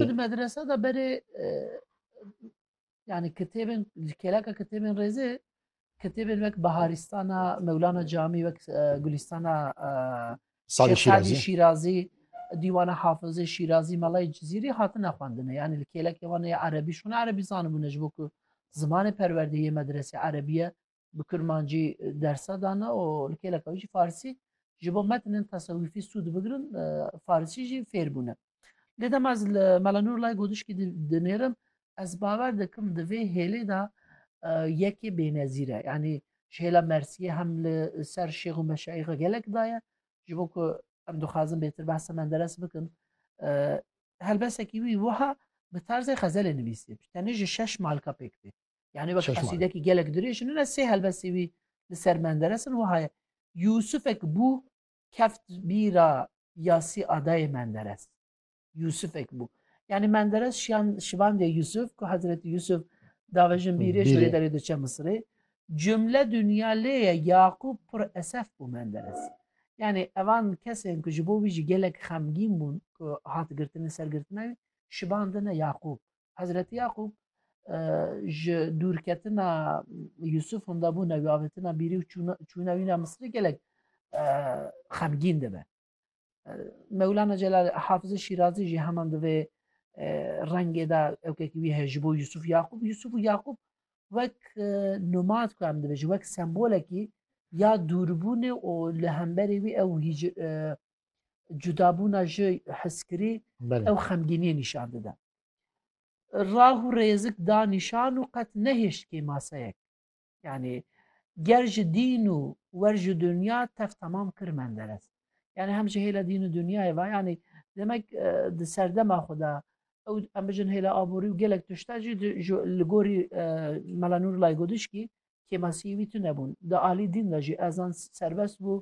Tu di medresa de berê yani kitêbên ji kêleka kitêbên rêzê kitêbên wek Biharîstana Mewlana Camî wek Gulîstana Sadî Şîrazî Şîrazî dîwana Hafizê Şîrazî Melayê Cizîrî hatine xwendine yani li kêlekê wan ê erebî şûne erebî zanibûne ji bo ku zimanê perwerdeyê medresê erebiye bi kirmancî dersa dana û li kêleka wî jî farsî ji bo metinin tesewîfî sûd bigirin farsî jî fêr bûne lê dema ez li mela nûrlay godişkî dinêrim ez bawer dikim di vê hêlê de yekê bênezîr e yanî ji hêla mersiyê hem li ser şêx û meşayixa gelek daye ji bo ku em dixwazin bêtir behsa menderes bikin helbesekî wî wiha bi tarzê xezelê nivîsê tenê ji şeş malka pêk tê Yani bak qasîdekî gelek dirêj ne sê helbestî wî li ser menderes in wiha ye Yûsifek bû keft bîra yasî adayê menderes Yûsifek bû yani menderes şiyan şivandê Yûsif ku Hezretî Yûsif davejin bîrê ji wê derê diçe Misirê cumle dunya lê ye Yaqûb pir esef bû menderes yani evan kesên ku ji bo wî jî gelek xemgîn bûn ku hat girtinê sergirtina wî şibandine Yaqûb Hezretî Yaqûb ji dûrketina Yûsûf hûnda bû newî avêtina bîrî û çûna wîna Misrî gelek xemgîn dibe. Mewlana Celal Hafizê Şîrazî jî heman di vê rengê de ewkekî wî heye ji bo Yûsûf Yaqûb Yûsûf û Yaqûb wek nomad ku em dibêjin wek sembolekî ya dûrbûnê û li hemberê wî ew hîc cudabûna ji hiskirî ew xemgîniyê nîşan dide. Rah û rêzik da nîşan û qet nehêşt kê maseyek. Yanî ger ji dîn û wer ji dinya tev temam kir Menderes. Yanî hem ji hêla dîn û dinyayê ve yanî demek di serdema xwe de ew em bijin hêla aborî û gelek tişta jî li gorî Mela Nûrlay Godişkî kêmasiyê wî tune bûn. Di alî dîn de jî ezan serbest bû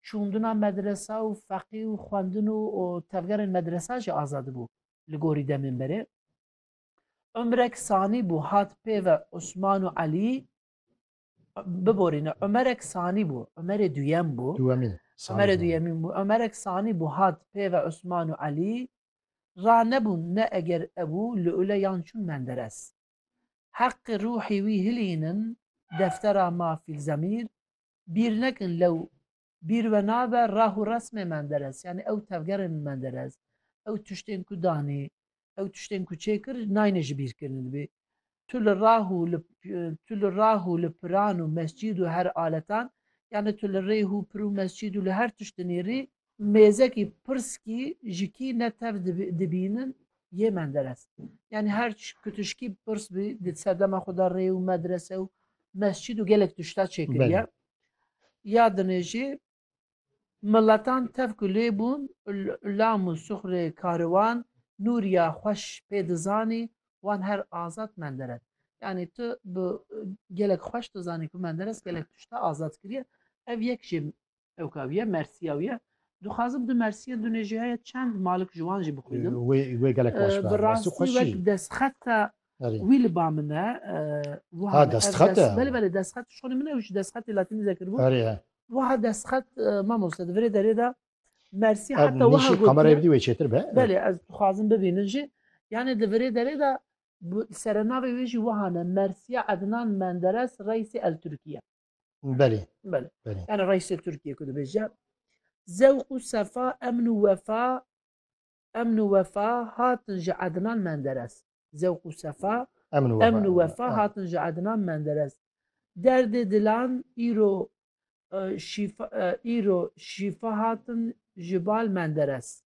çûndina medresa û feqî û xwendin û tevgerên medresa jî azad bû li gorî demên berê Ömrek sanî bû hat pêve Osman û Elî biborîne Ömerek sanî bû Ömerê duyem bû Ömerê duyemîn bû Ömerek sanî bû hat pêve Osman û Elî ra nebûn ne eger ebû li ule yan çûn menderes heqi ruhî wî hilînin deftera ma fîlzemîr Bîr nekin lew bîr ve nabe rah û resmê Menderes yanî ew tevgerên Menderes, ew tiştên ku danî, ew tiştên ku çêkir nayne ji bîr kirin. Dibê tu li rah û li tu li rah û li piran û mescîd û her aletan yanî tu li rêh û pir û mescîd û li her tişt dinêrî mêzekî pirskî ji kî ne tev dibînin yê Menderes. Yanî her ku tişkî pirs bî di serdema xwe de rê û medrese û mescîd û gelek tişta çêkiriye. Ya dinê jî miletan tev ku lê bûn lam û suxrê kariwan Nûriya xweş pê dizanî wan her azad Menderes. Yanî tu bi gelek xweş dizanî ku Menderes gelek tişta azad kiriye ev yek jî Ewka wiye Mersiya wiye. Dixwazim di Mersiya du nêjihaya çend malik ji wan jî bixwînim. Wê gelek baş be. Bi rastî wek destxeta wî li ba min e. Wiha destxet e. Belê belê destxet şonê min ew ji destxetê latînî zekiribû. Wiha destxet mamoste di virê derê de Mersî heta wiha got. Kamerayê bidî wê çêtir be. Belê ez dixwazim bibînin jî. Yani di virê derê de serenavê wê jî wihane Mersiya Ednan Menderes Reisê El Tirkiye. Belê. Belê. Belê. Yani reisê Türkiye ku dibêje zewq û sefa emn û wefa emn û wefa hatin ji Ednan Menderes. Zewq û sefa emn û emn û wefa hatin ji Ednan Menderes. Derdê dilan îro şîfa îro şîfa hatin ji bal Menderes.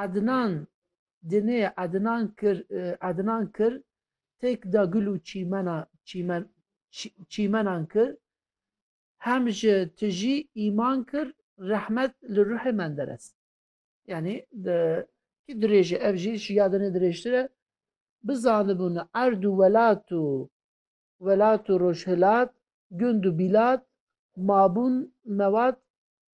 Ednan Dinê Ednan Kir Ednan Kir têk da gul û çîmena çîmen çîmenan kir hem ji tijî îman kir rehmet li ruhê Menderes. Yanî di kî dirêje ev jî ji ya dinê dirêjtir e bizanibûn erd û welat û welat û rojhilat gund û bîlat mabûn mewat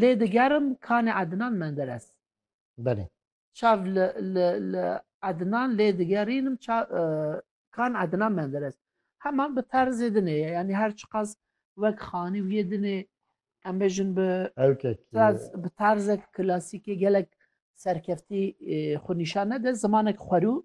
lê digerim kanê Ednan Menderes. Belê. Çav li li Ednan lê digerînim kan Ednan Menderes. Heman bi terzê dinê ye yanî her çiqas wek xanî wiyê dinê em bêjin bi bi terzek klasîkê gelek serkeftî xwe nîşan nede zimanek xwerû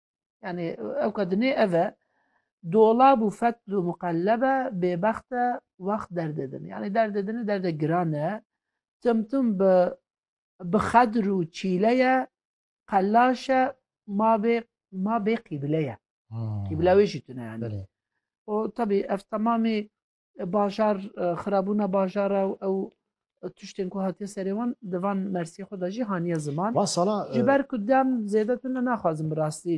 Yani ew ka dinê ev e dolab û fetl û muqelleb e bêbext e wext derdê din. Yani derdê din derde giran e tim tim bi bi xedr û çîle ye qelaş e ma bê ma bê qîbile ye. Qîbile wê jî tune yani. O tabi ev tamamî Bajar xirabûna bajara û ew tiştên ku hatiye serê wan di van mersiyê xwe de jî haniye ziman. Van sala Ji ber ku dem zêde tune naxwazim bi rastî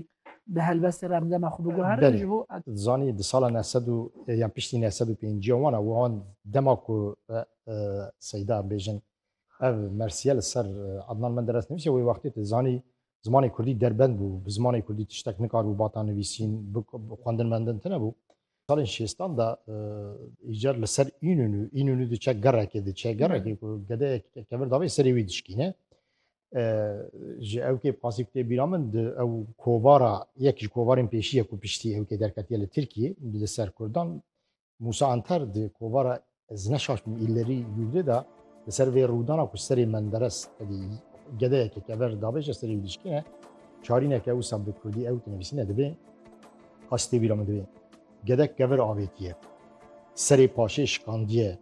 bi helbestê re em dema xwe biguherin belê. ji bo em Tu dizanî di sala neh sed û yan piştî neh sed û pêncîyan wan e wan dema ku Seyda bêjin ev mersiye li ser Adnan Menderes nivîse wê wextê tu dizanî zimanê Kurdî derbend bû, bi zimanê Kurdî tiştek nikaribû bata nivîsîn, xwendin mendin tine bû. Salên şêstan de îcar li ser Înûnû, Înûnû diçe gerekê diçe gerekê ku gedeyek kevir davê serê wî dişkîne. Ji ew kê qasî kutê bîra min di ew kovara yek ji kovarên pêşî ye ku piştî ew kê derketiye li Tirkiyê li ser Kurdan Musa Anter di kovara Ez neşaştîm îlerî yûrî de li ser vê rûdana ku serê Menderes tevî gedeyeke kever dabêje serê wî dişkîne çarîneke wisa bi kurdî ew tinivîsîne dibê qasîtê wî ra min dibê gedek kever avêtiye serê paşê şikandiye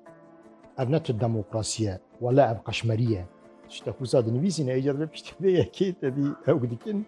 ev ne tu demokrasiye wele ev qeşmeriye tiştek wisa dinivîsîne êca divê piştî vê yekê tevî ew dikin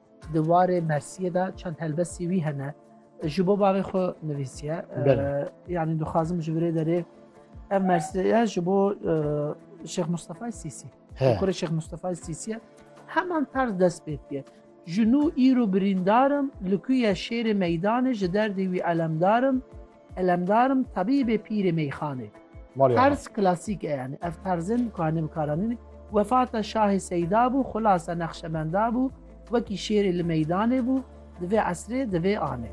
Di warê Mersiyê de çend helbestî wî hene. Ji bo bavê xwe nivîsiye. Yanî dixwazim ji virê derê ev Mersiyeye ji bo Şêx Mustafay Sîsî. Kurê Şêx Mustafay Sîsiye heman tarz dest pê diye. Ji nû îro birîndarim li ku ye şêrê meydanê ji derdê wî elemdarim. Elemdar im tabîbê pîrê meyxanê. Terz klasîk e yanî ev terzin ku em karanîn wefata şahê seyda bû xulasa nexşemenda bû wekî şêrê li meydanê bû di vê esrê di vê anê.